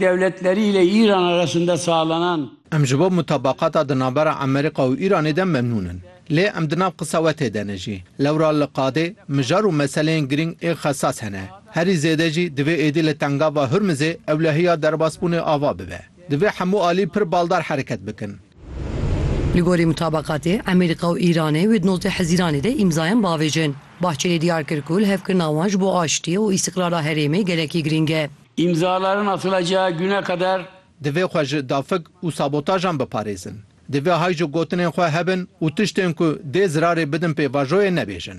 Dewletlerî lê Îran a resinde salenan. Em ji bo mutabaqata di navbera Emerîqa û Îranê de memnûn in. Lê em di nav qisewetê de ne jî. Lewra li qadê mijar û meseleyên girîng ê xesas hene. Herî zêde jî divê êdî li tengava Hurmizê ewlehiya derbasbûnê ava bibe. Divê hemû alî pir baldar hereket bikin. Li gorî mutabaqatê Emerîqa û Îranê wê di nozdeh hezîranê de îmzayan biavêjin. Bahçelî diyar kir ku lihevkirina wan ji bo aştî û îstîqrara herêmê gelekî girîng e. Îmzalarin a Silaca Gune Kader. Divê xwe ji dafik û sabotajan biparêzin. Divê hay ji gotinên xwe hebin û tiştên ku dê zirarê bidin pêvajoyê nebêjin.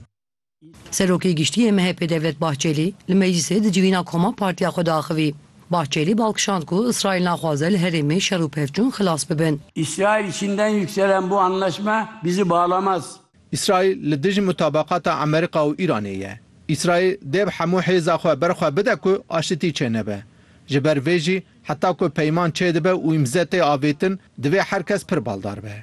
Serokê Giştî yê MHP'ê Devlet Bahçelî li meclîsê di civîna koma partiya xwe de axivî. Bahçelî bal kişand ku Îsraîl naxwaze li herêmê şer û pevçûn xilas bibin. Îsraîl Çînden yükselen bu anlaşma bizi bağlamaz. Îsraîl li dijî mutabaqata Amerîka û Îranê ye. Îsraîl dêb hemû hêza xwe ber xwe bide ku aşitî çênebe. Ji ber vê jî heta ku peyman çêdibe û îmze tê avêtin, divê her kes pir baldar be.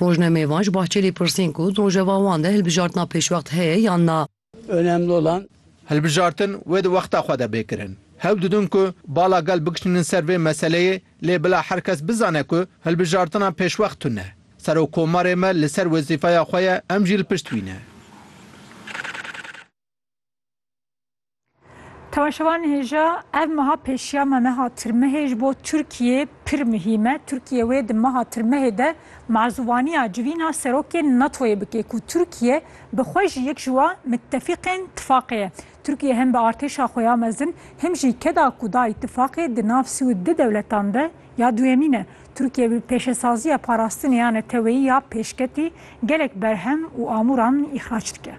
Rojnamevan ji Bahçelî pirsîn ku rojeva wan de hilbijartina pêşwext heye yan na. Önemli olan Hilbijartin wê di wexta xwe de bê kirin. Hewl didin ku bala gel bikişînin ser vê meseleyê lê bila her kes bizane ku hilbijartina pêşwext tune. Serokkomarê me li ser wezîfeya xwe ye, em jî li pişt wî ne. Temaşevan hêja ev meha pêşiya me meha tirmehê ji bo Tirkiyê pir muhîm e. Tirkiye wê di meha tirmehê de mazûvaniya civîna serokê NATOyê bike ku Tirkiye bi xwe jî yek ji wa mitefîqên tifaqê ye. Tirkiye hem bi artêşa xwe ya mezin him jî keda ku dayî tifaqê di nav sî û du dewletan de Ya duyemîn e, Tirkiye bi pêşesaziya parastinê ya neteweyî ya pêşketî gelek berhem û amûran îxrac dike.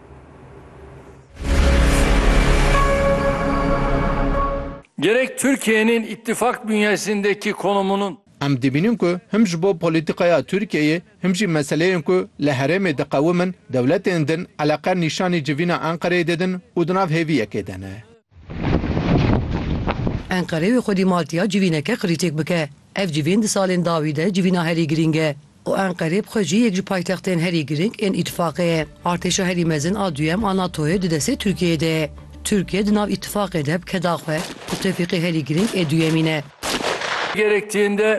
Gerek Tirkiye'nin ittifak bünyesindeki konumunun. Em dibînin ku him ji bo polîtîkaya Tirkiyeyê him jî meseleyên ku li herêmê diqewimin dewletên din eleqer nîşanî civîna Enqereyê didin û di nav hêviyekê de ne. Enqere wê xwedî Maltiya civîneke qirîtêk bike. Ev civîn di salên dawî de civîna herî girîng e û Enqere bi xwe jî yek ji paytextên herî girîng ên Îtîfaqê ye. Artêşa herî mezin a duyem a NATO'yê di destê Tirkiyeyê de ye. Tirkiye di nav Îtîfaqê de bi keda xwe ku tevfîqê herî girîng ê duyemîn e. Gerektiğinde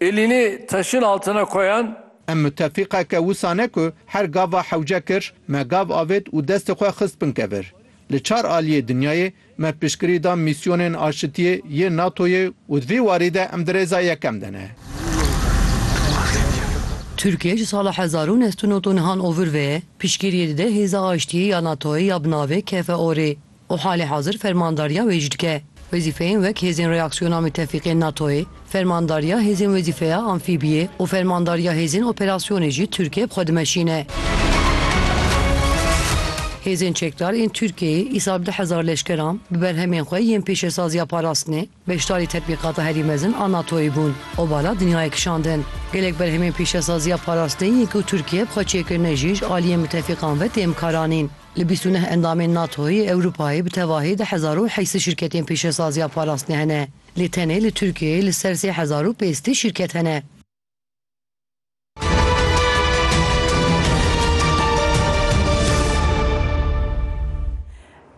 elini taşın altına koyan. Em mutefîqeke wisa ne ku her gava hewce kir, me gav avêt û destê xwe xist bin kevir. Li çar aliyê dinyayê me piştgirî da mîsyonên aşitiyê yê NATO'yê û di vî warî de em di rêza yekem de ne. Tirkiye ji sala hezar û neh sed û nod û nihan ovir ve piştgiriyê dide Hêza Aştiyê ya NATO'yê ya bi navê KFOR'ê û halê hazir fermandariya wê jî dike. Wezîfeyên wek hêzên reaksiyona mitefîq ên NATO'yê, fermandariya hêzên wezîfeya amfîbiyê û fermandariya hêzên operasyonê jî Tirkiye bi xwe dimeşîne. Hêzên çekdar ên Tirkiyeyê îsal du hezar leşkeran bi berhemên xwe yên pêşesaziya parastinê beşdarî tetbîqata herî mezin a NATO'yê bûn û bala dinyayê kişandin. Gelek berhemên pêşesaziya parastinê yên ku Tirkiye bi xwe çêkirine jî ji aliyên mitefîqan ve têm karanîn. Li bîst û neh endamên NATOyê, Ewropayê, bi tevahî di hezar û heysî şîrketên pêşesaziya parastinê hene. Lê tenê li Tirkiyeyê li ser sê hezar û pêstî şîrket hene.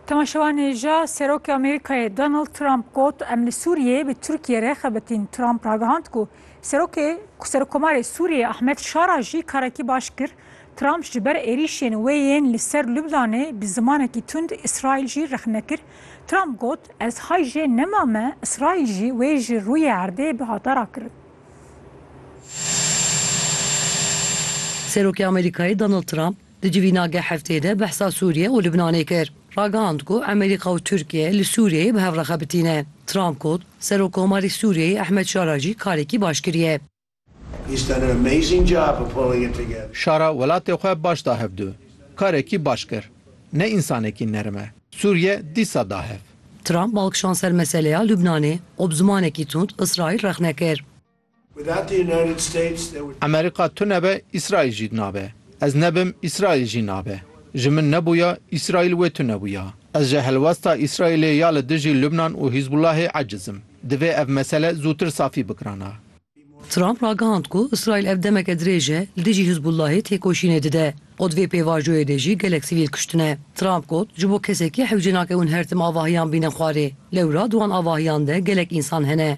Temaşevanê ja Serokê Amerîkayê Donald Trump got, Em li Sûriyeyê bi Tirkiyê re xebitîn. Trump ragihand ku Serokê Serokkomarê Sûriyê Ahmed Şara jî karekî baş kir. Trump ji ber êrîşên wê yên li ser Lubnanê bi zimanekî tund Îsraîl jî rexne kir. Trump got, Ez hay jê nema me, Îsraîl jî wê ji rûyê erdê bihata rakirin. Serokê Amerîkayê Donald Trump di civîna geh heftê de behsa Sûriye û Lubnanê kir. Ragihand ku Amerîka û Tirkiye li Sûriyeyê bi hev re xebitîne. Trump got, Serokkomarê Sûriyeyê Ehmed Şara jî karekî baş kiriye. Şara welatê xwe baş da hev du. Karekî baş kir. Ne însanekî nerm e. Sûriye dîsa da hev. Trump balkişand ser meseleya Lubnanê û bi zimanekî tund Îsraîl rexne kir. Amerîka tune be Îsraîl jî nabe. Ez nebim Îsraîl jî nabe. Ji min nebûya Îsraîl wê tune bûya. Ez ji helwesta Îsraîlê ya li dijî Lubnan û Hîzbûllahê eciz im. Divê ev mesele zûtir safî bikirana. Trump ragihand ku Îsraîl ev demeke dirêj e li dijî Hizbûllahê têkoşînê dide û di vê pêvajoyê de jî gelek sivîl kuştine. Trump got, Ji bo kesekî hewce nakewin her tim avahiyan bînin xwarê. Lewra di wan avahiyan de gelek însan hene.